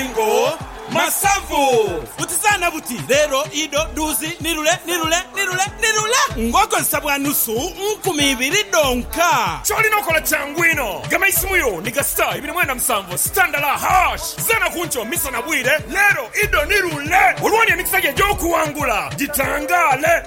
Mayengo, Masavu, Butizaana buti, Leero, Ido, Dhuuzi, ni lule, ni lule, ni lule, ni lule ng'okozesa bwa nusu nkumi ibiri dhonka. Ky'olina okola kyangu inho, gema eisimu yo ni ga star ibiri mwenda musanvu star ndala hash. Zaana ku nkyo, misana, bwire, Leero, Ido, ni lule olwo oli emikisa gyo egy'okuwangula gitangaale.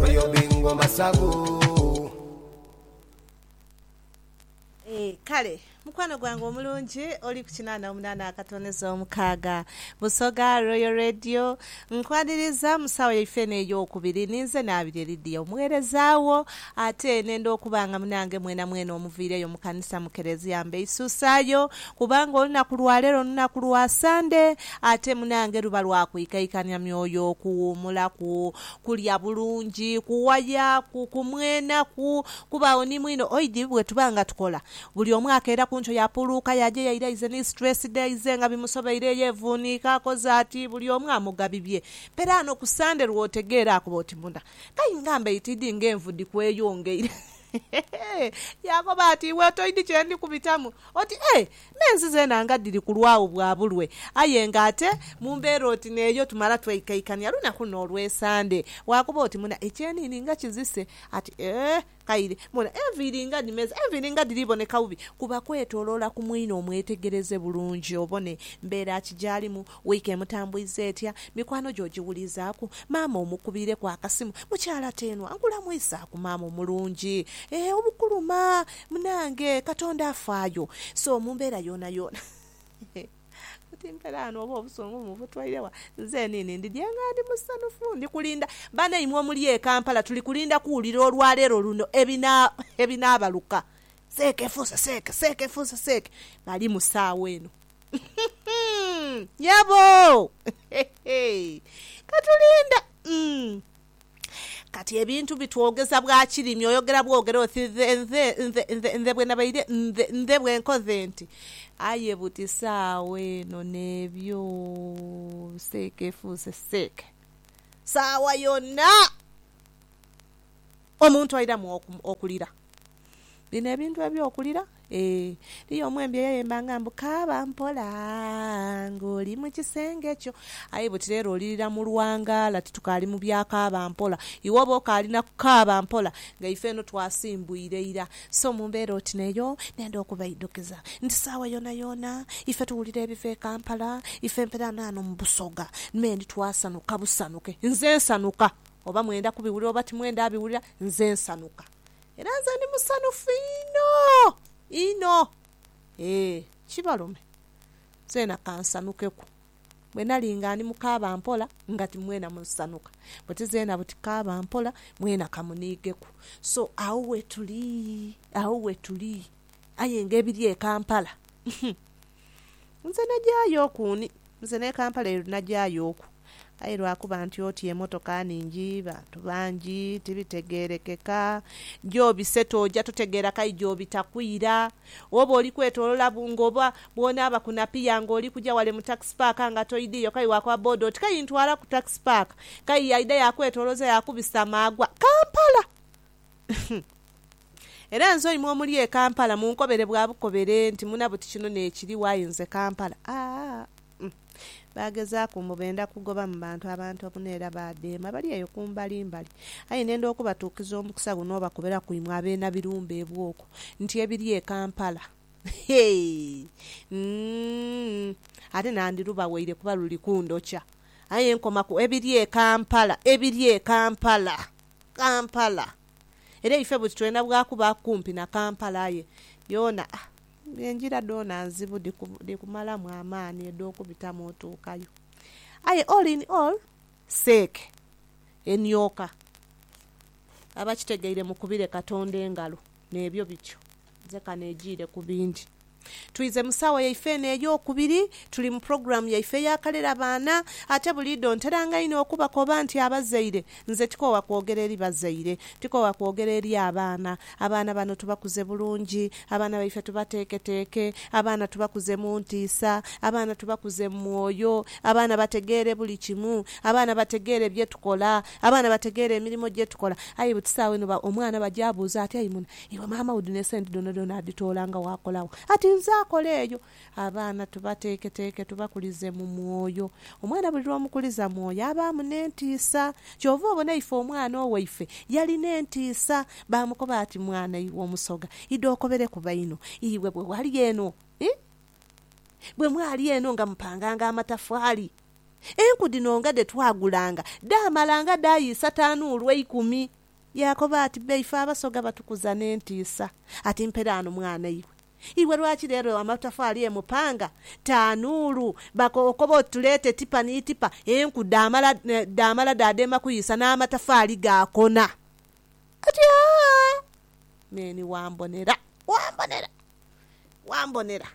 Royal Bingo Masavu. Eeh kale mukwano gwange omulungi oli ku kinana omunana akatoneza omukaaga Busoga Royal Radio nkwaniriza mu saawa yaife eno eyokubiri ninze Nabirye Lydia omughereza wo ate nenda okuba nga munange mwena mwena omuviireyo mu kanisa mu Kerezia mbeisusayo kubanga olunaku lwalero lunaku lwa Sande ate munange luba lwa kwikaikania myoyo okuwumulaku kulya bulungi, kuwaya, ku, kumwena, ku, kubaagho ni mwino. Oidhi bwe tuba nga tukola, buli omu akeera ku nkyo yaapuluuka yaaja yaira aize ni situleesi dhe, aize nga bimusobeireyo, yevuuniika, akoze ati, buli omu amuga bibye. Peraano ku Sande lw'otegeera akuba oti munda, Kayi ngamba eyo tiidhi ng'envu dhi kweyongeire. Yaakoba ati, Iwe toidhi kye ndi kubitamu. Oti, Ee, N'ensi zeena nga dhiri kulwagho bwa bulwe. Aye nga ate mu mbeera oti n'eyo tumala twaikaikania lunaku n'olw'esande. Bwakuba oti muna ekyeniini nga kizise, ati ee, kaire, muna enviiri nga dhimeze, enviiri nga dhiri boneka bubi, kuba kwetoloola ku mwine omwetegereze bulungi obone mbeera ki gy'alimu, Wiiki emutambwiza etya? Mikwano gye ogiwulizaaku? Maama omukubiireku akasimu? Mukyala Teenwa, nkulamwisaaku maama omulungi. Eeh obukuluma! Munange, Katonda afaayo. So mu mbeera yoonayoona. Oti mpera ghano oba obusungu mubutwaire wa? Nze niini ndi gye nga ndi musanhufu. Ndi kulinda banaimwe omuli e Kampala, tuli kulinda kuwulira olwaleero luno ebinaabaluka. Seeka efuuse seeka, seeka efuuse seeka. Bali mu saagho eno. Nyabo! Ka tulinde. Kati ebintu bitwogeza bwa kirimi, oyogera bwogera oti nze, nze, nze, nze, nze bwe nabaire, nze, nze bwe nkoze nti. Aye buti saagho eno n'ebyo seeka efuuse seeka. Saagho yona. omuntu aidhamu okulira. Bino ebintu eby'okulira, ee, eriyo omu embi eyayembanga mbu, Kaaba mpola ng'oli mu kisenge kyo. Aye buti leero olirira mu lwangaala, titukaali mu bya kaaba mpola. Iwe oba okaali na kukaaba mpola nga ife eno twasimbwire ira. So mu mbeera oti n'eyo, ndenda okubaidhukiza nti saagho yoonayoona ife tuwulira ebiva e Kampala, ife mperaano ano mu Busoga me ndi twasanuka busanuke. Nze nsanuka oba mwenda kubiwulira oba timwenda biwulira, nze nsanhuka. Era nze ndi musanhufu inho, inho. Ee, kibalume, nzeena ka nsanhukeku. Bwe nali nga ndi mu kaaba mpola, nga ti mwena musanhuka. Buti zeena buti kaaba mpola, mwena ka muniigeku. So, agho we tuli, agho we tuli. Aye ng'ebiri e Kampala, humm! Nze nagyayo oku ni. Nze n'e Kampala eri nagyayo oku. Aye lwa kuba nti oti emotoka ningi, bantu bangi, tibitegeerekeka. Gy'obise tooja tutegeera k'aye gy'obita kwira. Oba oli kwetolola bu nga oba bw'onaaba ku Napier nga oli kuja wale mu Tax Park nga toidhiiyo k'aye waakoba boda oti k'aye ntwala ku Tax Park. K'aye yaidha yaakwetoloza yaakubisa amaagwa, Kampala! Era nze oimwe omuli e Kampala munkobere bwa bukobere nti muna buti kino nekiri why nze Kampala aah umm Bagezaku mbu benda kugoba mu bantu abantu obuna era badheema bali eyo kumbali mbali aye nenda okubatuukiza omukisa guno obakobera ku imwe abeena birumbe ebwoko nti ebiri e Kampala heeii umm ate nandi lubawaire kuba luli kundhokya aye nkomaku ebiri e Kampala ebiri e Kampala Kampala. Era ife buti twena bwa kuba kumpi na Kampala aye yoona ah engira dhoona nzibu dhikumalamu amaani edh'okubitamu otuukayo. Aye all in all seeke enioka aba kitegeire mukubire Katonda engalo n'ebyo bityo. Nze kano ejiire ku bindi. Twize mu saawa yaife eno ey'okubiri. Tuli mu pulogulaamu yaife ey'akalera baana. Ate buliidho nteranga inho okubakoba nti abazaire, nze tikoowa kwogera eri bazaire, tikoowa kwogera eri abaana. Abaana bano tubakuze bulungi, abaana baife tubateeketeeke, abaana tubakuze mu ntiisa, abaana tubakuze mu mwoyo, abaana bategeere buli kimu, abaana bategeere bye tukola, abaana bategeere emirimo gye tukola. Aye buti saawa eno omwana bw'aja abuuza ati, Ayi muna, Iwe maama wo dhino esente dhonadhona adhitoola nga waakolagho ati nze akola eyo. Abaana tubateeketeeke tubakulize mu mwoyo. Omwana buli lw'omukuliza mwoyo abaamu n'entiisa. Kyova obona ife omwana owaife yalina entiisa. Baamukoba ati, Mwana iwe Omusoga, idha okobereku baino. Iwe bwe wali eno, ii, bwe mwali eno nga mupanganga amatafaali, enku dhino nga dhe twagulanga dhaamalanga dhayiisa tanuulu eikumi. Yaakoba ati, Be ife abasoga batukuza n'entiisa. Ati, Mpere ghano mwana iwe. Iwe lwaki leero ewa amatafaali emu panga, tanuulu, baka okoba oti tuleete tipa ni tipa, enku dhaamala, dhaamala dha dheema kuyiisa n'amatafaali gaakona? Ati, Aa! Meeni wambonera, wambonera, wambonera.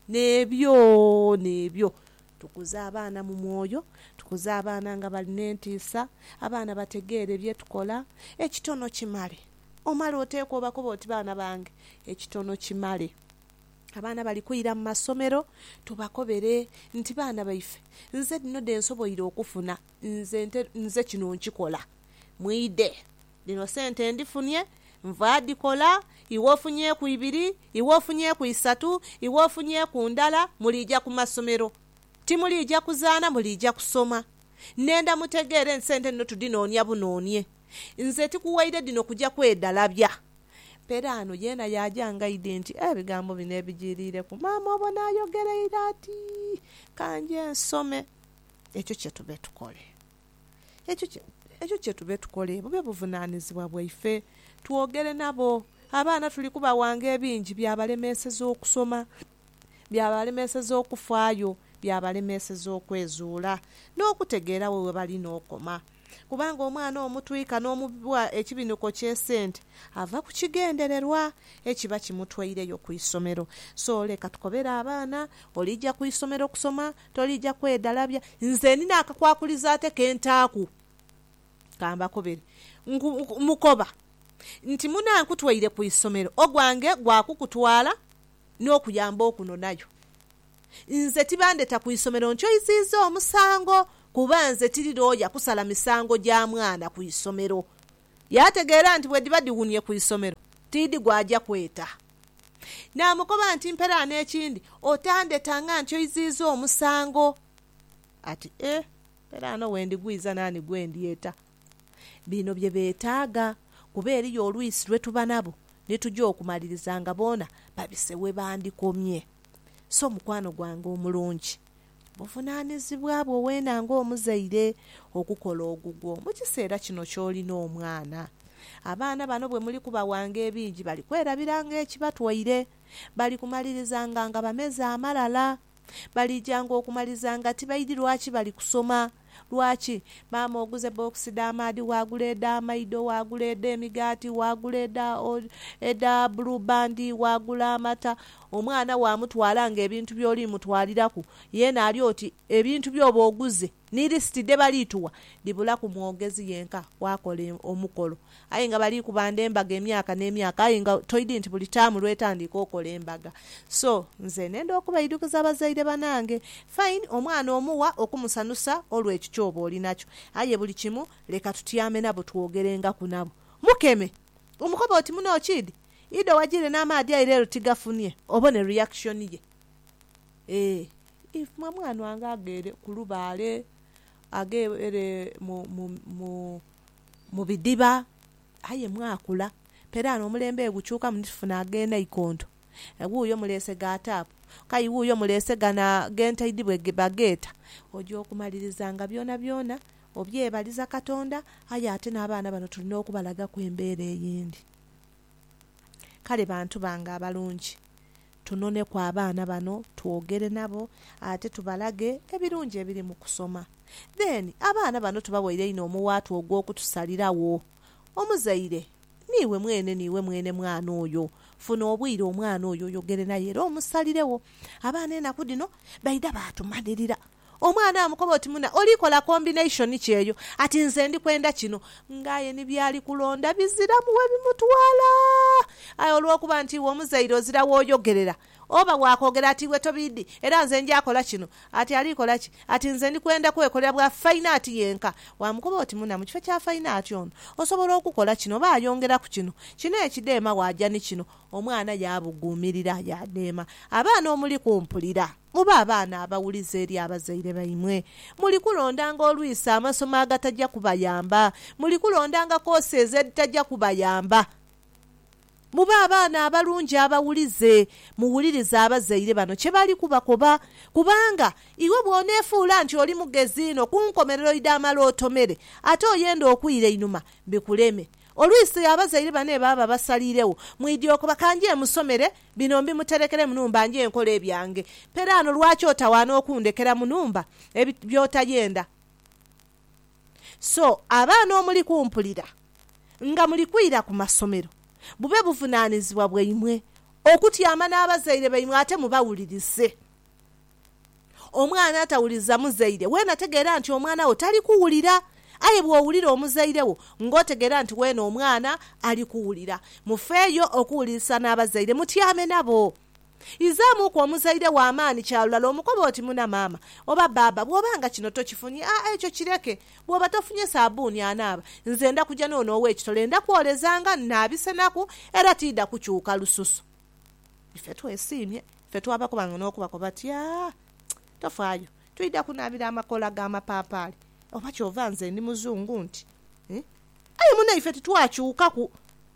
N'ebyo, n'ebyo. Tukuze abaana mu mwoyo. Tukuze abaana nga bali n'entiisa. Abaana bategeere bye tukola. Ekitono kimale. Omale oteeke obakobe oti, Baana bange, ekitono kimale. Abaana bali kwira mu masomero, tubakobere nti, Baana baife, nze dhino dhe nsoboire okufuna. Nze nte, nze kino nkikola. Mwidhe. Dhino sente ndifunye, nva dhikola, iwe ofunyeeku ibiri, iwe ofunyeeku isatu, iwe ofunyeeku ndala, muliija ku masomero. Timuliija kuzaana, muliija kusoma. Nenda mutegeere nti sente dhino tudhinoonia bunoonie. Nze tikuwaire dhino kuja kwedalabya. Peraano yeena yaaja angaide nti, Ebigambo bino ebijiiriireku maama obo n'ayogereire ati, Ka nje nsome ekyo kye tube tukole. Ekyo kye tube tukole bube buvunaanizibwa bwaife. Twogere nabo. Abaana tuli kubawanga ebingi byabalemeeseza okusoma, byabalemeeseza okufaayo, byabalemeeseza okwezuula n'okutegeera we webalina okoma. Kubanga omwana omutwika n'omubibwa ekibinuko ky'esente ava ku kigendererwa ekiba kimutweireyo ku isomero. So leka tukobere abaana, oliija ku isomero kusoma, Tolija kwedalabya. Nze ndina akakwakulizo ate ke ntaaku. Ka mbakobere. Nku, nku, mukoba nti mune ankutwaire ku isomero, ogwange gwa kukutwala n'okuyamba okunonayo. Nze tibandeta ku isomero nkyoiziiza omusango, kuba nze tiri looya kusala misango gya mwana ku isomero. Yaategeera nti bwedhiba dhiwunie ku isomero, tiidhi gwaja kweta. Naamukoba nti, Mpera n'ekindi, otandhetanga nti oiziiza omusango. Ati, E, mpera no we ndigwiza naani gwe ndyeta? Bino bye beetaaga, kuba eriyo olwisi lwe tuba nabo ni tuja okumaliriza nga boona babise we bandikomye. So mukwano gwange omulungi, Buvunaanizibwa bwo weena ng'omuzaire okukola ogugwo mu kiseera kino ky'olina omwana. Abaana bano bwe muli kubawanga ebingi bali kwerabiranga ekibatwaire. Bali kumalirizanga nga bameze amalala. Baliijanga okumaliza nga tibaidhi lwaki bali kusoma. Lwaki? Maama oguza ebbokisi dh'amaadhi, waagula edh'amaido, waagula edh'emigaati, waagula edha, edha Blue Band, waagula amata. Omwana waamutwala ng'ebintu by'oli mutwaliraku, yeena ali oti ebintu by'oba oguze ni lisiti dhe bali tuwa dhibulaku mwogezi yenka, waakola omukolo. Aye nga bali kubanda embaga emyaka ne myaka aye nga toidi nti buli taamu lwetandiika okola embaga so nze nenda okubaidukiza abazaire banange fine omwana omugha okumusanusa olwe ekyo kyoba olinakyo aye buli kimu leka tutyame nabo twogerengaku nabo mukeme omukobe oti muno kid ido wajire namaadhi aye lero tigafunie obone reaction ye eeh if mwe mwana wange aghele kulubaale aghe ere mu mu. mu bidhiba. Aye mwakula. Peraano omulembe gukyukamu ni tufuna ag'enaikonto. Wuuyo muleese ga taapu. Kayi wuuyo muleese gano ag'entaidhi bwe bageeta. Oja okumaliriza nga byonabyona obyebaliza Katonda aye ate n'abaana bano tulina okubalagaku embeera eyindi. Kale bantu bange abalungi, tunoneku abaana bano twogere nabo ate tubalage ebirungi ebiri mu kusoma. Then abaana bano tubaweire inho omuwaatwa ogw'okutusaliragho. Omuzaire, niiwe mwene niiwe mwene mwana oyo. Funa obwire omwana oyo oyogere naye era omusaliregho. Abaana enaku dhino baidha baatumanirira Omwana amukoba oti, Muna, oli kola combination ki eyo? Ati, Nze ndi kwenda kino. Nga aye ni by'ali kulonda biziramu we bimutwala. Aye olw'okuba nti iwe omuzaire ozira w'oyogerera, oba waakoogera ati, Iwe tobiidhi, era nze nja kola kino. Ati, Ali kola ki? Ati, Nze ndi kwenda kwekolera bwa fine art yenka. Waamukoba oti, Muna, mu kifo kya fine art ono, osobola okukola kino oba ayongera ku kino. Kino ekidheema waaja ni kino. Omwana yaabuguumirira, yaadheema. Abaana omuli kumpulira. Mube abaana abawulize eri abazaire baimwe. Muli kulondanga olwisa amasomo agataja kubayamba. Muli kulondanga koosezi edhitaja kubayamba. Mube abaana abalungi abawulize. Muwulirize abazaire bano kye bali kubakoba. Kubanga iwe bw'oneefuula nti oli mugezi inho, ku nkomerero idamala otomere, ate oyende okwira einhuma bikuleme. Olwisi abazaire bane baba basaliiregho, mwidhi okoba ka nje musomere bino mbimuterekere mu nhumba nje nkole ebyange. Peraano lwaki otawaana okundhekera mu nhumba ebit by'otayenda? So abaana omuli kumpulira nga muli kwira ku masomero, bube buvunaanizibwa bwaimwe okutyama n'abazaire baimwe ate mubawulirize. Omwana atawuliriza muzaire we nategeera nti omwana wo tali kuwulira. Aye bw'owulira omuzaire wo ng'otegeera nti weene omwana ali kuwulira. Mufeeyo okuwulirisa n'abazaire, mutyame nabo. Izaamuuku omuzaire wo amaani kya lulala omukobe oti, Muna maama oba bbaabba, bw'oba nga kino tokifunye, aa ekyo kireke. Bw'oba tofunye saabbuuni anaaba, nze nda kuja n'ono ow'ekitole, nda kwolezanga, nnaabisenaku, era tiidha kukyuka lususu. Ife twesiimye, ife twabakoba nga n'okubakoba ati, Aah, tofaayo, twidha kunaabira amakoola g'amapaapaali, oba ky'ova nze ndi Muzungu nti? Aye mune ife titwakyukaku,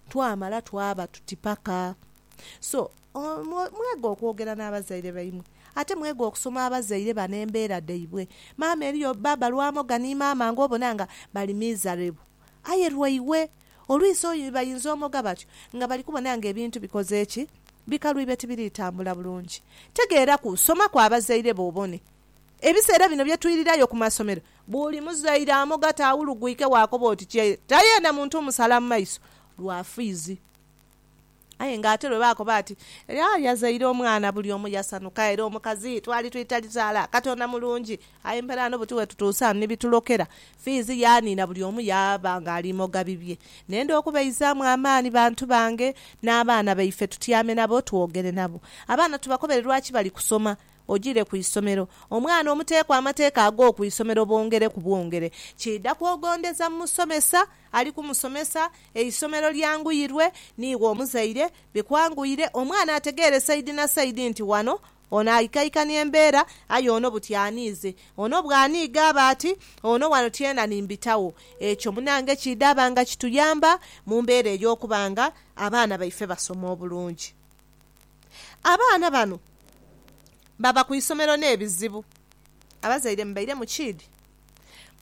twamala twaba tuti paka. So, mwega okwogera n'abazaire baimwe. Ate mwega okusoma abazaire bano embeera dhaibwe. Maama eriyo bba balwamoga ni maama ng'obona nga bali miserable. Aye lwaiwe Olwisi bayinza omoga batyo nga bali kubona nga ebintu bikoze ki? Bikalu ibe tibiri tambula bulungi. Tegeeraku, soma ku abazaire bo obone. Ebiseera bino bye twirirayo ku masomero, buli muzaire amoga taawulugwike waakoba oti kye ta yeena muntu omusala mu maiso lwa fiizi. Aye nga ate lwe baakoba ati, Era yazaire omwana, buli omu yasanuka. Era omukazi twali twitalizaala. Katonda mulungi. Aye mperaano buti we tutuuse ghano ni bitulokera. Fiizi yaaniina, buli omu yaaba ng'ali moga bibye. Nenda okubaizaamu amaani bantu bange, n'abaana baife tutyame nabo twogere nabo. Abaana tubakobere lwaki bali kusoma. Ojiire ku isomero. Omwana omuteeku amateeka ag'oku isomero bwongere ku bwongere, kiidha kwogondeza mu musomesa ali ku musomesa, eisomero lyanguyirwe, niiwe omuzaire, bikwanguire, omwana ategeere saidi na saidi nti wano ono aikaikania embeera aye ono buti aniize, ono bwaniiga aba ati, ono wano tyena ni mbitagho. Ekyo munange kiidhaba nga kituyamba mu mbeera ey'okuba nga abaana baife basoma obulungi. Abaana bano baba ku isomero n'ebizibu. Abazaire mubaire mukiidhi?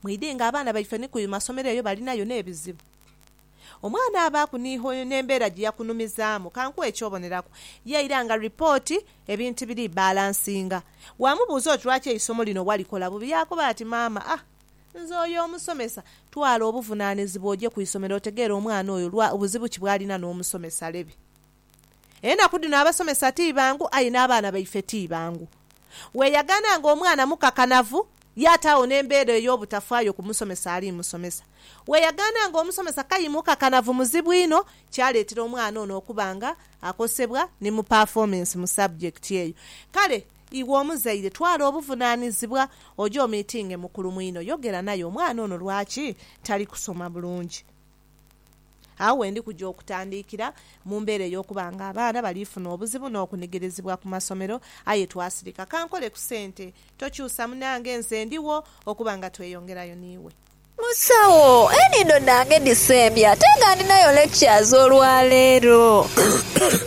Mwidhe nga abaana baife ni ku masomero eyo balinayo n'ebizibu. Omwana abaaku ni hoyo n'embeera gye yakunumizaamu. Ka nkuwe eky'oboneraku. Yaira nga ripooti ebintu biri bbalansinga. Waamubuuza oti lwaki eisomo lino walikola bubi, yaakoba ati, Maama, a nze oyo omusomesa. Twala obuvunaanizibwa oje ku isomero otegeere omwana oyo lwa buzibu ki bw'alina n'omusomesa. Lebe. Enaku dhino abasomesa ti bangu aye n'abaana baife ti bangu. Weeyagaana ng'omwana mukakanavu yaataagho n'embeera ey'obutafaayo ku musomesa ali musomesa. Weeyagaana ng'omusomesa k'ayi mukakanavu muzibu inho kyaleetera omwana ono okuba nga akosebwa ni mu pafoomensi mu sabujekiti eyo. Kale iwe omuzaire twala obuvunaanizibwa oje omiitinge mukulu mwino yogera naye omwana ono lwaki tali kusoma bulungi. Agho we ndi kuja okutandiikira mu mbeera ey'okuba nga abaana bali funa obuzibu n'okunigirizibwa ku masomero aye twasirika. Ka nkole ku sente. Tokyusa munange, nze ndigho okuba nga tweyongerayo n'iwe. Musawo, enhindo dhange dhisembye ate nga ndinayo lectures olwaleero.